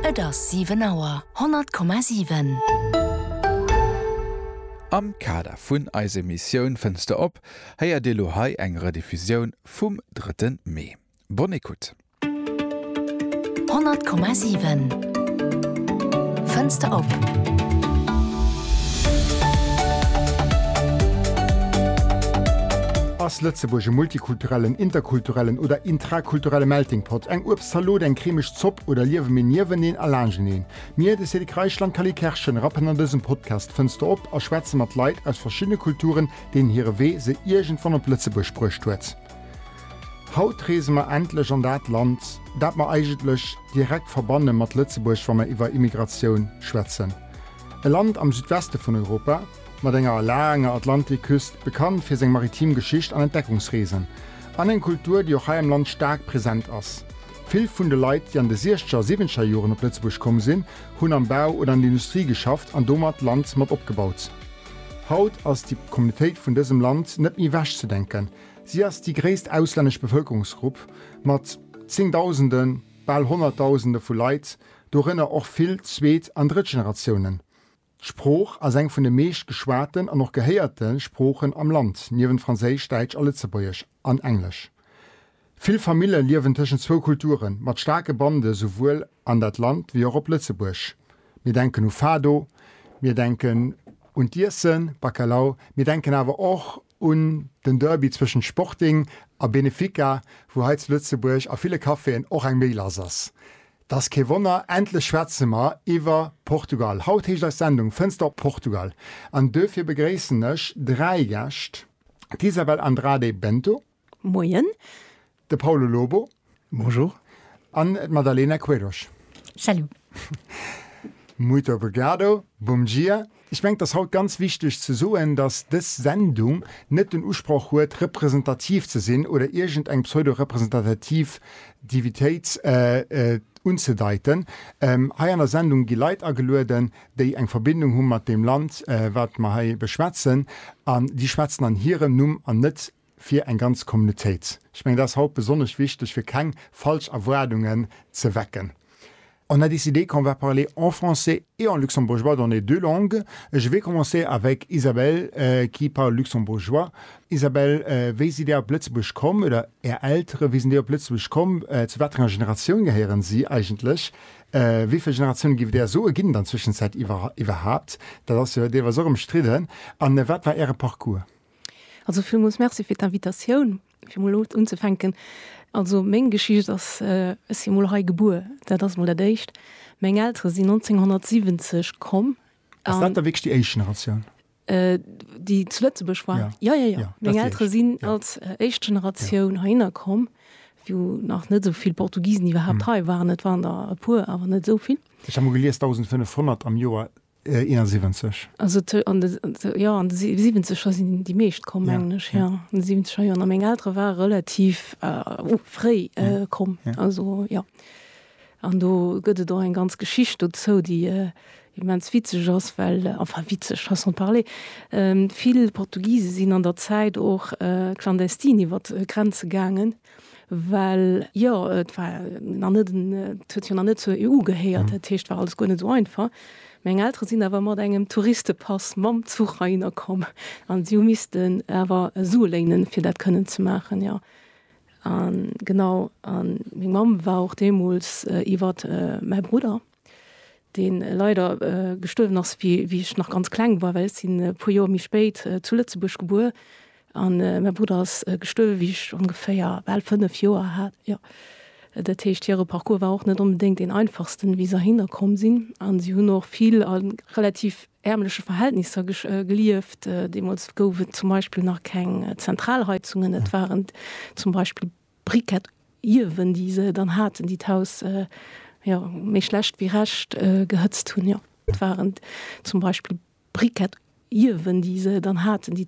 Et ass 7 Auer. 100,7. Am Kader vun eise Missioun Fënster op héiert Dir lo hei eng Rediffusioun vum drëtte Mee. Bonne écoute. 100,7. Fënster op. Ass Lëtzebuerg e Multikulturelland? kulturellen, interkulturellen oder intrakulturelle Melting Pot, eng Uebstzalot, eng cremeg Zopp oder liewe mir nieweneen a laanscheneen? Mir, de Cédric Reichel an d'Cally Kerschen, rappen an dësem Podcast d'Fënster op a schwätze mat Leit aus verschiddene Kulturen, deenen hire Wee se iergendwann op Lëtzebuerg bruecht huet. Haut reese mer endlech an dat Land, dat mer eigentlech direkt verbanne mat Lëtzebuerg, wa mer iwwer Immigratioun schwätzen. E Land am Südweste vun Europa, Mat enger laanger Atlantikküst, bekannt fir seng maritim Geschicht an Entdeckungsreesen, an eng Kultur, déi och hei am Land staark present ass. Vill vun de Leit, déi an de Siechzeger a Siwwenteger Joren op Lëtzebuerg komm sinn, hunn am Bau oder an der Industrie geschafft an domat d'Land mat opgebaut. Haut ass déi Communautéit vun dësem Land net méi ewechzedenken. Si ass déi gréisst auslännesch Bevëlkerungsgrupp mat Zéngdausende, bal Honnertdausende vu Leit, dorënner och vill Zweet an Drëttgeneratiounen. D'Sprooch ass eng vun de meescht geschwaten an och gehéierte Sproochen am Land, niewent Franséisch, Däitsch a Lëtzebuergesch an Englesch. Vill Famille liewen tëschent zwou Kulturen, mat staarke Bande souwuel an dat Land wéi och op Lëtzebuerg. Mir denken u Fado, mir denken un d'Iessen, Bacalao, mir denken awer och un den Derby zwëschent Sporting a Benefica, wou hei zu Lëtzebuerg a ville Caféen och eng méi lass ass. 't ass kee Wonner, endlech schwätze mer iwwer Portugal. Haut heescht eis Sendung Fënster op Portugal an duerfir begréissen ech dräi Gäscht, d'Isabel Andrade Bento. Moien. De Paulo Lobo. Bonjour. An d'Madalena Queiroz. Salut. Muito obrigado, bom dia. Ech mengen et ass haut ganz wichteg ze soen, datt dës Sendung net den Usproch huet representativ ze sinn oder iergend eng pseudo-Representativitéit unzedeiten. Hei an der Sendung gi Leit agelueden, déi eng Verbindung hu mat deem Land wat mer hei beschwätzen an déi schwätzen an hirem Numm an net fir eng ganz Communautéit. Ech mengen, dat ass haut besonnesch wichteg, fir keng falsch Erwaardungen ze wecken. On a décidé qu'on va parler en français et en luxembourgeois dans les deux langues. Je vais commencer avec Isabelle, qui parle luxembourgeois. Isabelle, wéi sidd Dir op Lëtzebuerg komm, oder Är Eltere, wéi sinn déi op Lëtzebuerg komm? Zu wat fir enger Generatioun gehéieren si eigentlech? Wéi vill Generatiounen, giff et Där soen, ginn et an der Zwëschenzäit iwwerhaupt? Dat ass jo deelweis och ëmstridden. An wat war Äre Parcours? Also villmools Merci fir d'Invitatioun, fir emol elo unzefänken. Also meng Geschicht ass, ech si mol hei gebuer, dat ass emol dat Éischt. Meng Eltere sinn 1970 komm. Ass dat da wierklech déi éischt Generatioun? Déi zu Lëtzebuerg war? Jo. Jo, jo, jo. Meng Eltere sinn als éischt Generatioun heihinner komm, wou nach net esou vill Portugisen iwwerhaapt hei waren. Et waren der e puer, awer net esou vill. Ech hat emol gelies, 1.500 am Joer 71. Also t an de, jo, an de 70er sinn déi meescht komm, mengen ech, jo, an de 70er Joren. A meng Eltere ware relativ fréi komm, also jo. An do gëtt et och eng ganz Geschicht dozou, déi immens witzeg ass, well, enfin witzeg, façon de parler, vill Portugise sinn an der Zäit och clandestin iwwer d'Grenze gaangen, Well jo, et war nach net en, et huet jo nach net zur EU gehéiert, dat heescht, et war alles guer net esou einfach. Meng Eltere sinn awer mat engem Touristepass mam Zuch heihinner komm an si hu missten awer Sue léinen, fir dat kënnen ze maachen, jo. A genau, a meng Mamm war och deemools iwwer mäi Brudder. deen leider gestuerwen ass wéi wéi ech nach ganz kleng war, well ech sinn e puer Joer méi spéit zu Lëtzebuerg gebuer an mäi Brudder ass gestuerwen wéi ech ongeféier bal 5 Joer hat, jo. Dat heescht hire Parcours war och net onbedéngt deen einfachsten wéi se heihinner komm sinn an si hunn och vill a relativ ärmleche Verhältnisser gelieft. Deemools gouf et zum Beispill nach keng Zentralheizungen, et waren zum Beispill Briquet iewen, déi se dann haten, déi d'Haus, jo, méi schlecht wéi recht gehëtzt hunn, jo. Et waren zum Beispill Briquet iewen, déi se dann haten, déi.